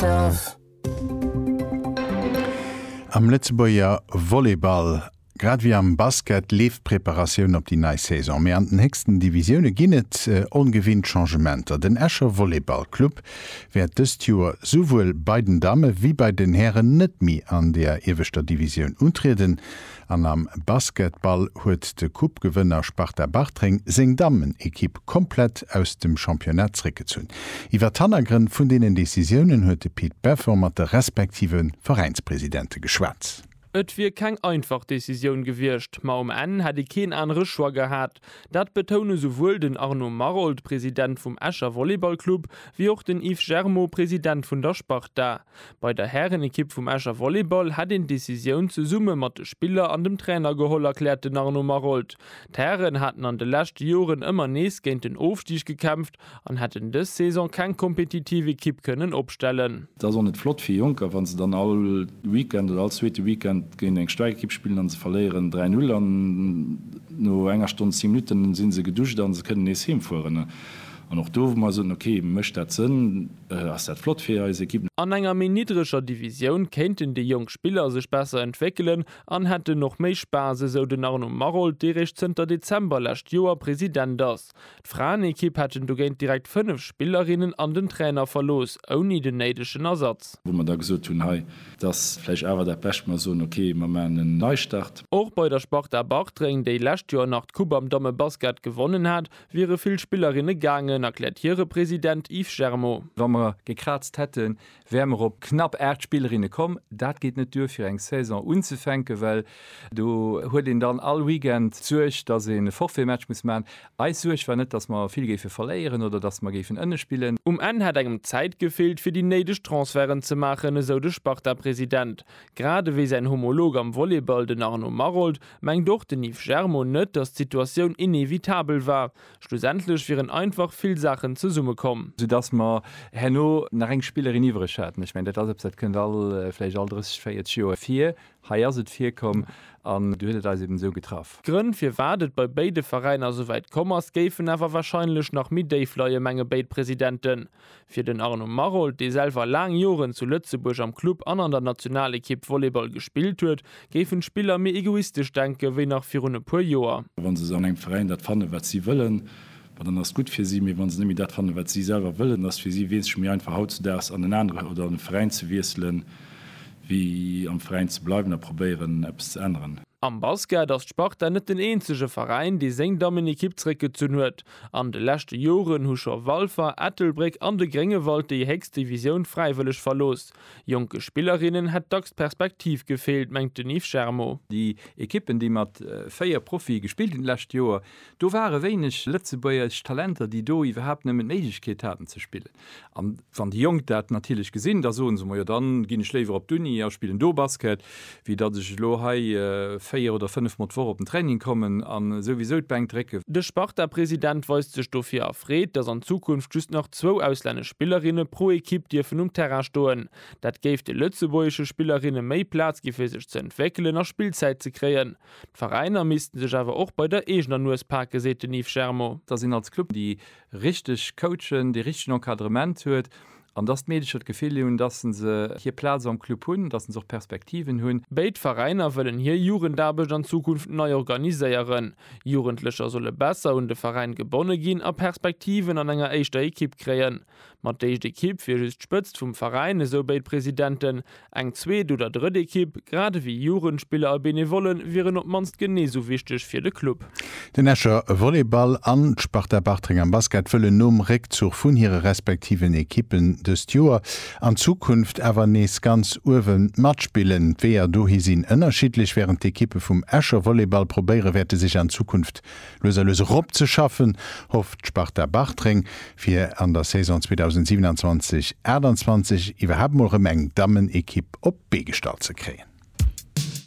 Christophe. Am Lëtzebuerger Volleyball, grad wéi am Basket, leeft d'Preparatioun op déi nei Saison. Mee an den héchsten Divisioune ginn et ongewinnt Changementer. Den Escher Volleyball Club wäert dëst Joer souwuel bei den Damme wéi bei den Hären net méi an der ieweschter Divisioun untrieden. An am Basketball huet de Coupe-Gewënner Sparta Bartreng seng Dammenekipp komplett aus dem Championnat zréckgezunn. Iwwer d'Hannergrënn vun deenen Decisiounen huet de Pit Beffen mat de respektive Veräinspresidente geschwat. Et wier keng einfach Decisioun gewiescht, ma um Enn hätt ee keen anere Choix gehat. Dat betoune souwuel den Arnaud Maroldt, President vum Escher Volleyballclub, wéi och den Yves Germaud, President vun der Sparta. Bei der Härenekipp vum Escher Volleyball hätt een d'Decisioun zesumme mat de Spiller an dem Trainer geholl, erkläert den Arnaud Maroldt. D'Hären haten an de leschte Joren ëmmer nees géint den Ofstig gekämpft an hätten dës Saison keng kompetitiv Ekipp kënnen opstellen. Et ass och net flott fir Jonker, wa se dann all Weekend oder all zweete Weekend géint eng staark Ekipp spillen an se verléieren 3, 0 an no enger Stonn 10 Minutten si se geduscht an se kënnen nees heemfueren. An och do, wou mer soen, ok, mécht dat Sënn, ass dat flott fir eis Ekipp. An enger méi niddreger Divisioun kéinten déi jonk Spiller sech besser entwéckelen an hätten och méi Spaass, esou den Arnaud Maroldt, dee réischt zënter Dezember lescht Joer President ass. D'Fraenekipp hätten dogéint direkt 5 Spillerinnen an den Trainer verlooss, ouni den néidegen Ersatz. Wou mer da gesot hunn, hei, et ass vläicht awer dat Bescht, mer soen, ok, mer maachen en Neistart. Och bei der Sparta Bartreng, déi lescht Joer nach d'Coupe am Dammebasket gewonnen hat, Wiere vill Spillerinne gaangen, erkläert hire President Yves Germo. Wa mer gekraazt hätten, wäre mer op knapp 8 Spillerinne komm. Dat geet net duer fir eng Saison unzefänken, well do huet een dann all Weekend d'Suerg, datt een e Forfaitmatch muss maachen. Eis Suerg war net, datt mer vill géife verléieren oder datt mer géifen ënne spillen. Um Enn hätt engem d'Zäit gefeelt, fir déi néideg Transferten ze maachen, esou de Sparta-President. Grad ewéi säin Homolog am Volleyball, den Arnaud Maroldt, Mengt och den Yves Germo net, datt d'Situatioun inevitabel war. Schlussendlech wieren einfach vill Saachen zesummekomm. Soudass mer herno nach eng Spillerin iwwereg haten. Ech mengen, dat ass eppes, dat kënnt all, vläicht all 30, 40 Joer vir. Hei ass et virkomm an du huet et eis eben esou getraff. D'Grënn, firwat et bei béide Veräiner esouwäit komm ass, géifen awer warscheinlech nach méi déif leien, menge béid Presidenten. Fir den Arnaud Maroldt, dee selwer laang Joren zu Lëtzebuerg am Club an an der Nationalekipp Volleyball gespillt huet, géifen d'Spiller méi egoistesch denken, wéi nach virun e puer Joer. Wa se an engem Veräin dat fannen, wat si wëllen, ma dann ass gutt fir si. Mee wa se net méi dat fannen, wat si selwer wëllen, ass et fir si weess ech méi einfach hautzedaags an en anere oder an e Veräin ze wiesselen, wéi am Veräin ze bleiwen a probéieren, eppes ze änneren. Am Basket ass d'Sparta net den eenzege Veräin, dee seng Dammenekipp zeréckgezunn huet. An de leschte Joren hu scho Walfer, Ettelbréck an de Gréngewald déi héchst Divisioun fräiwëlleg verlooss. Jonke Spillerinnen hätt dacks d'Perspektiv gefeelt, mengt den Yves Germo. Déi Ekippen, déi mat 4 Profie gespillt hunn d'lescht Joer, do ware wéineg lëtzebuergesch Talenter, déi do iwwerhaapt nëmmen d'Méiglechkeet haten ze spillen. An wann déi Jonk dat natierlech gesinn, da soe se, Majo, dann ginn ech léiwer op d'Uni a spillen do Basket, wéi datt ech elo hei véier oder fënnef Mol d'Woch op den Training kommen a souwisou d'Bänk drécken. De Sparta-President weist sech dofir erfreet, datt an Zukunft just nach zwou auslännesch Spillerinne pro Ekipp dierfen um Terrain stoen. Dat géif de lëtzebuergesche Spillerinne méi Plaz gi fir sech ze entwéckelen a Spillzäit ze kréien. D'Veräiner missten sech awer och bei der eegener Nues pake, seet den Yves Germo. Datt een als Club déi richteg coachen, dee richtegen Encadrement huet an dass d'Meedecher d'Gefill hunn, dass se se hir Plaz am Club hunn, dass se och Perspektiven hunn. Béid Veräiner wëllen hir Jugendaarbecht an Zukunft nei organiséieren. Jugendlecher solle besser un de Veräin gebonne ginn a Perspektiven an enger éischter Ekipp kréien. Mat d'éischt Ekipp wier just d'Spëtzt vum Veräin, esou béid Presidenten. Eng zweet oder drëtt Ekipp, grad ewéi Jugendspiller a Benevolle wieren op d'mannst genee sou wichteg fir de Club. Den Escher Volleyball an d'Sparta Bartreng am Basket wëllen nom Réckzuch vun hire respektiven Ekippen dëst Joer an Zukunft awer nees ganz uewe matspillen. D'Weeër dohi sinn ënnerschiddlech. Wärend d'Ekippe vum Escher Volleyball probéiere wäerte sech an Zukunft Lues a lues erop ze schaffen, hofft d'Sparta Bartreng, fir an der Saison 2027, 28 iwwerhaapt mol rëm eng Dammenekipp op d'Bee gestallt ze kréien.